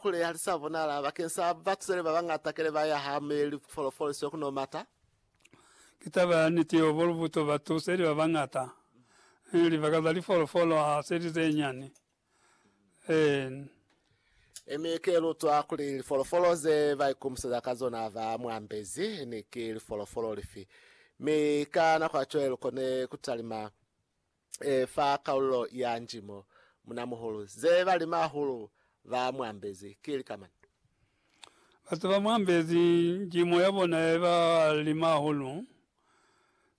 Kuli ha li sa bonala bakeng sa batuseli ba bañata kele ba ya ha Meli ku folofoliswe ku no mata. Ki taba ya niti yo bolubuto batuseli ba bañata, ee, libaka za lifolofolo ha se li ze nyani. Ee. Ee, mi ki lutwa kuli lifolofolo ze ba ikumiseza ka zona ba mu ambezi ni ki lifolofolo lifi, mi ka nako ya cwale lu kone ku talima. e fa kalulo ya nji mo munamuhulu ze ba li mahulu ba muambezi ki lika mani? Ba ze ba muambezi nji mo ya bona ye ba li mahulu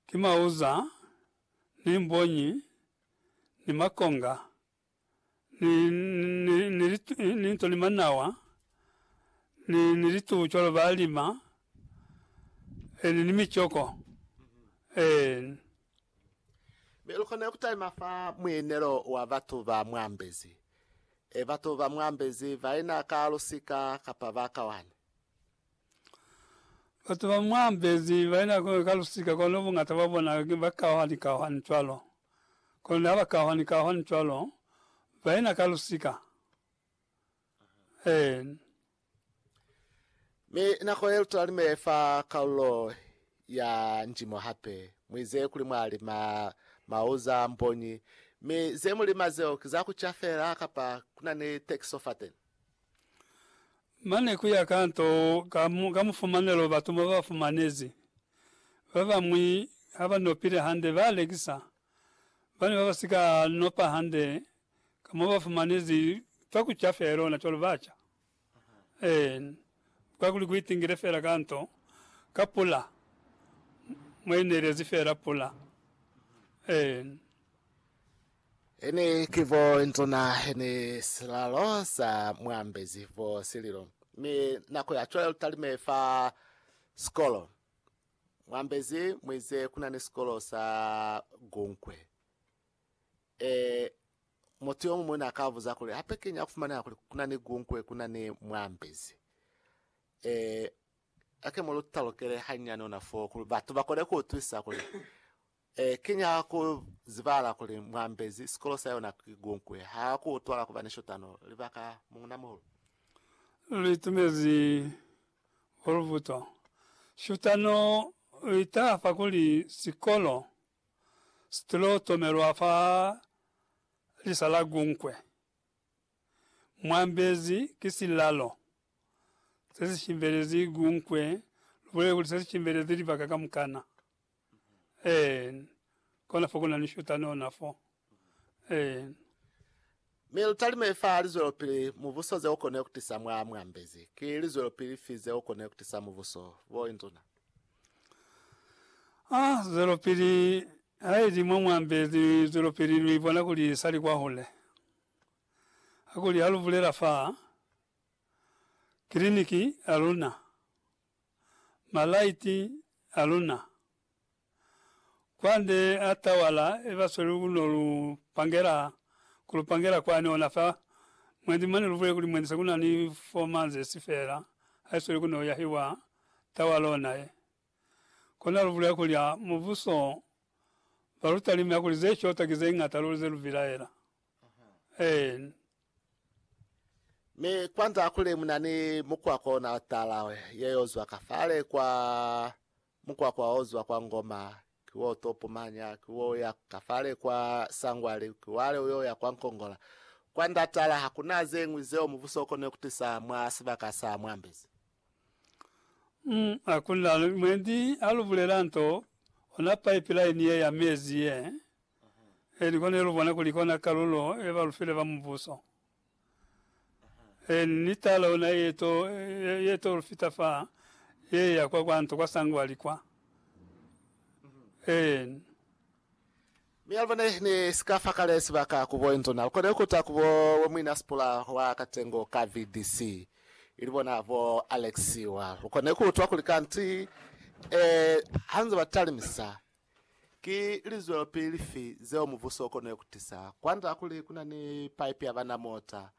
ki mauza, ni mbonyi, ni makonga, ni, ni, ni, litu, ni nto ni manawa, ni, ni litubu cwalo ba lima, e, ni, ni micoko. E. Mi lukona ku taima fa muinelo wa batu ba muambezi. E, batu ba muambezi baina ka lusika kapa ba kawane. Batu ba mwa Mbezi ba yena kono ka lusika, kono bungata bwa bona ne ba kahwani-kahwani cwalo. Kono ne ba kahwani-kahwani cwalo, ba yena ka lusika. Eeni. Mi nako ye lutala ni mele fa kalulo ya njimo hape, mwi ze kuli mwa lima mauza, mbonyi, mi ze mu lima zeo ki za ku ca fela kapa kuna ni tekiso fateni? Mane ku ya ka nto ka mu, ka mufumanelo batu mo ba fumanezi. Ba bañwi ha ba nopile hande, ba lekisa. Ba ne ba ba si ka nopa hande, ka mo ba fumanezi twa ku ca fela lona cwalo, ba ca. Ee, kakuli ku itingile fela ka nto, ka pula, mwa inelezi fela pula. Ee. Hene ki bo nzuna, hene silalo sa muambezi bo sililo. Mi nako ya cwale lutalime fa sikolo. Muambezi muize kuna ni sikolo sa gunkwe. E, mutu yomuñwi na ka buza kuli, hape kiñi ya kufumaneha kuli kuna ni gunkwe, kuna ni muambezi? E, hake mu lu talukele hanyane ona foo, kuli batu ba kone ku utwisa kuli E kinya ku zibala kuli Mwambezi sikolo sa yona ki Gunkwe ha ku utwala kuba ni shotano. Libaka, Muuna-muhulu. Lu itumezi bo lubuto. Shotano i taha fa kuli sikolo si tilo tomelwa fa lisa la Gunkwe. Mwambezi ki silalo se si shimbelezi Gunkwe, lu bulele kuli se si shimbelezi libaka kamukana. Eeh kona fo kuna ni shuta nona fo eeh. Mi lutalime fa lizwelopili mubuso ze ukone kutisa mwa muambezi. Ki lizwelopili fi ze ukone kutisa mubuso, bo induna? Ah, zwelopili haili mwa muambezi, zwelopili lu ibona kuli sali kwahule. Hakuli halubulela fa kiliniki yaluna. malaiti aluna. Kwande a tawala ebasweli ku no lu pangela, ku lu pangela kwani ona fa mwendi mane lubule kuli mwendi sekuna ni four manzesi fela haisweli ku no yahiwa tawala ona ye. Kona lubule kuli a mubuso balutalime akuli ze shota ki ze ngata luli ze lu bilaela. N. Mi kwanza kuli muna ni mukwakwa ona tala ye yo zwa ka fale kwa mukwakwa o zwa kwa Ngoma, ki wo to pumanya, ki wo ya ka fale kwa Sangwali, ki wale uyo ya kwa Nkongola. Kwanda tala hakuna zeñwi zeo mubuso ukone kutisa mwa sibaka sa Mwambezi. N. Hakuna mwendi alubulela nto, ona pipeline ye ya mezi ye Ee, ni kone lubona kuli kona kalulo ye ba lufile ba Mubuso. Ee, ni tala ona ye to, ye to lufita fa, ye ya kwa kwanto kwa sangwali kwa. Ee. Mi albo ne, ne si ka fa kale sibaka ku bo Enzo, na lu kone kuta ku bo Mwina Sipula wa Katengo ka VDC, ili bona bo Alex wa. Lu kone kuutwa kuli kanti, ee, hanze ba talimisa, Ki lizwelopili fi zeo mubuso ukona kutisa? Kwanda kuli kuna ni paipi ya bana mota,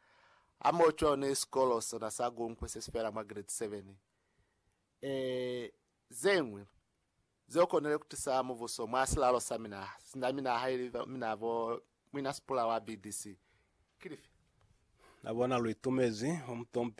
hamoho cwalo ni sikolo sona sa Gunkwe sesifela mwa Giredi 7. Ee, zeñwi zeo konile kutisa mubuso mwa silalo sa minaha, sina minaha ili mina bo Mwinasipula wa BDC, ki lifi? Na bona lu itumezi, bo Mtomp